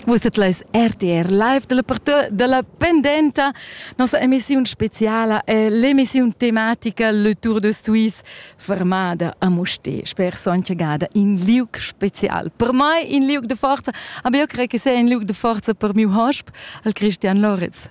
Vus set leis RTR live dalla parta dalla pendenta. Nossa emissiun speciala è l'emissiun tematica Le Tour de Suisse fermada a Mosté. Sper sonche gada in liuc special. Per mai in liuc de forza, aber io credo che sia in liuc de forza per miu hosp, il Christian Loritz.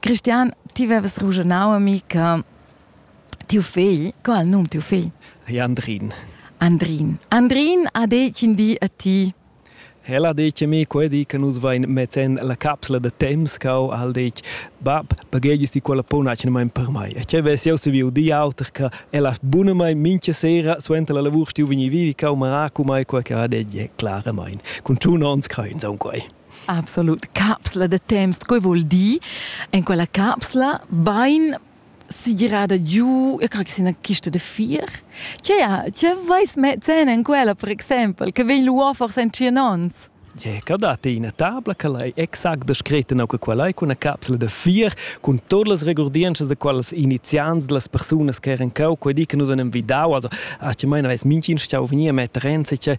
Christian, ti vevas rugenau a mi che tiu fegl, co ha il num tiu fegl? Andrin. Andrin. Andrin ha detg in di a ti. El ha detg a mi quei di che nus vein metten la capsla da temps cau, ha detg bab, baghegies di quella punacina mein per mai. E che vess jeu saviu di auter che el ha bunamain mincha sera suenter la lavur stiu vegni vivi cau maracu mai quei che ha detg, claramain. Cun tun ons crein saun quei. Absolut. Capsla de temps, quei vuol dir en quella capsla bein si girada giù, io creo che sia una kiste de fier. Tgea, tge vais mezzen en quella, per exempel, che vegn luà forse en tschien ons? Yeah, che dat ina tabla che lei exact descreta no che quella è una capsula de fier con todas las regurdiences de quelles iniziants de las personas che eran cau quei di che nous anem vidau also a ce meine weiß minchin stau venir met renze che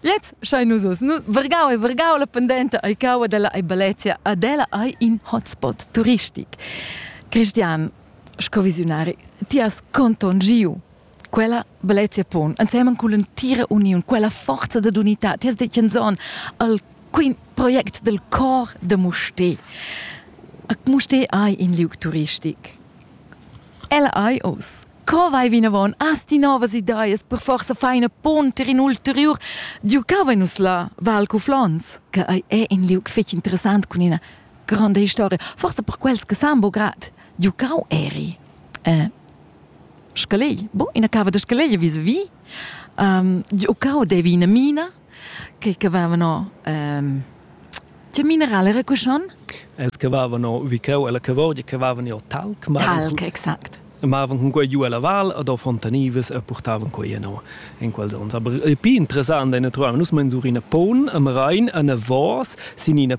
Lez schai nus oz, nu vargau e vargau la pendenta ei caua della ei Balezia ad ella ei in hotspot turistic. Cristian, sco visionari, ti has contongiu quella Balezia pon ensemen con l'entira union, quella forza de unità, ti has detto in zon al quin project del cor de Musté. Ac Musté ei in liug turistic. El ei os Co vai vinavon? Has ti novas ideas per forsa feina ponter in ulteriur? Diu cavein nus la Val Cuflons, che ei è in liug fetg interessant cun ina gronda historia, forsa per quels che san bo grad. Diu cau eri. Eh, scalei, bo, ina cava da scalei vis vi. Um, Giucao devi ina mina, che cavavano ehm che mineral era cuschon? Els cavavano vi cheu ella cavorgia cavavan jo talc, ma talc exact. Mavan cun quei giu ella val ad o fontanivas e portavan quei no in quels ons. Aber il pi interessant è naturalmente nus mensurina pon am rein an a vos sin ina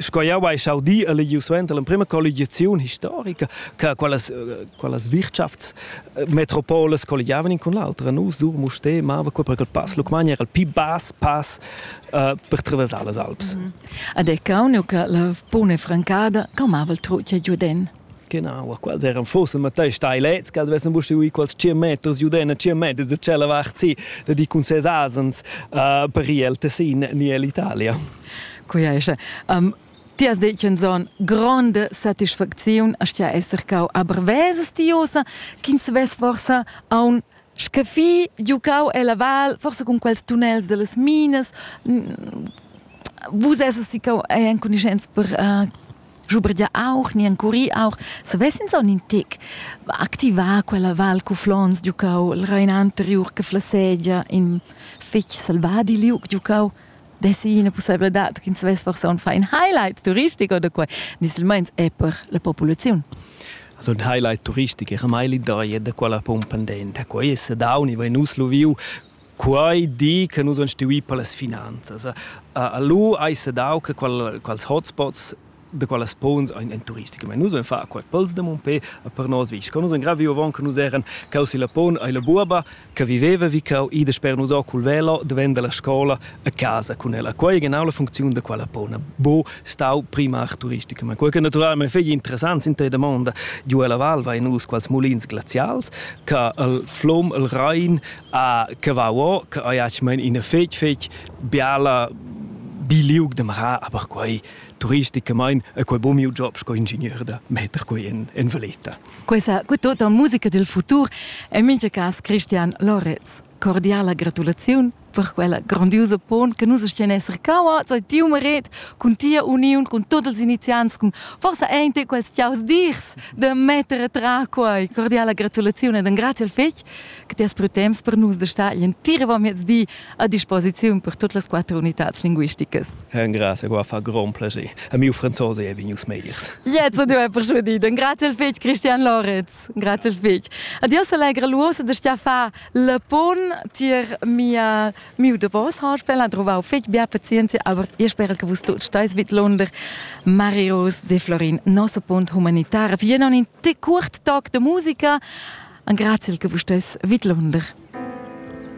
Sco jau hai saudì e legiu suenter l'emprima colligiaziun historica che quelles, quelles wirtschafts metropoles colligiavan in con l'altra. Nus dur Musté mava quei per il pass Lucmagna era il pi bas pass uh, per traversar las Alps. Mm -hmm. Ad è cauniu che la buna francada calmava il trutg a Giuden. Genau, quels eran forse matei stai lets, che vessen buste ui quals 100 meters giudena 100 meters da cella vart si, da di cun ses asens uh, per ir el Tessin niell'Italia. Quia esce. Um, ti has detto in zon grande satisfazione a stia esser cau a brevese stiosa, ch'ins ves forsa a un Sche fi giucau ella val, forsa cun quels tunnels dallas minas, vus essas sicau enconuschents per uh, schubregiar auch, ni encurir auch, savess ins aunc in tec activar quella val cu flons giucau, il Rein anteriur che flassegia in fetg selvadi liug giucau. dessi ina pussebladad ch'ins vess forsa un fein highlight turistic oder quai, nislmeins è per la populaziun. Also ein highlight turistic era mai l'idea da quella pon pendenta. Quei è sadaun, i va nus lu viu quei di che nus han stuì per las finanzas. Allora hai sedau che quels hotspots da qualas pons ein en turistica. Ma nus vein far qual pels de mon pe a per nos visch. Con nus ein gravi avon che nus eran cau si la pon ai la buaba che viveva vi cau i de sper nus cul velo diventa la scola a casa con ella. Quei genau la funziun da quella pona. Bo stau prima ach turistica, ma quei che naturalmente fegli interessant sind da mondo giù alla val vai nus quals mulins glazials che il flom il Rhein a che va o che ai mein in fetg fetg biala biliug de mara, aber quei turisticamain e quel bo miu job sco ingegner da metter quei en, en valeta. Questa quetto da musica del futur è mincha cas Christian Loretz. Cordiala gratulaziun per quella grandiosa pon che nus stian esser cauats e tiu meret cun tia uniun cun tots els iniziants cun forsa ente quels tiaus dirs de metter a tra quai cordiala gratulaziun ed un grazie al fetg che ti has pru temps per nus da star l'entiramiezdi a disposiziun per tutte le quattro unità linguistiche. Grazie, qua fa grand piacere. A mio francese è venius megliers. Jetzt du per schon Grazie al fetg Christian Lorenz. Grazie al fetg. Adios allegra l'uossa da Stefan Lepon tier mia Miu davos ha spela trovau fetg bia pazienzia, aber io spera che vus tuts stais vidlunder. Marius de Florin, nosso punt humanitare, für einen kurz Tag de musica. Grazie che vus stais vidlunder.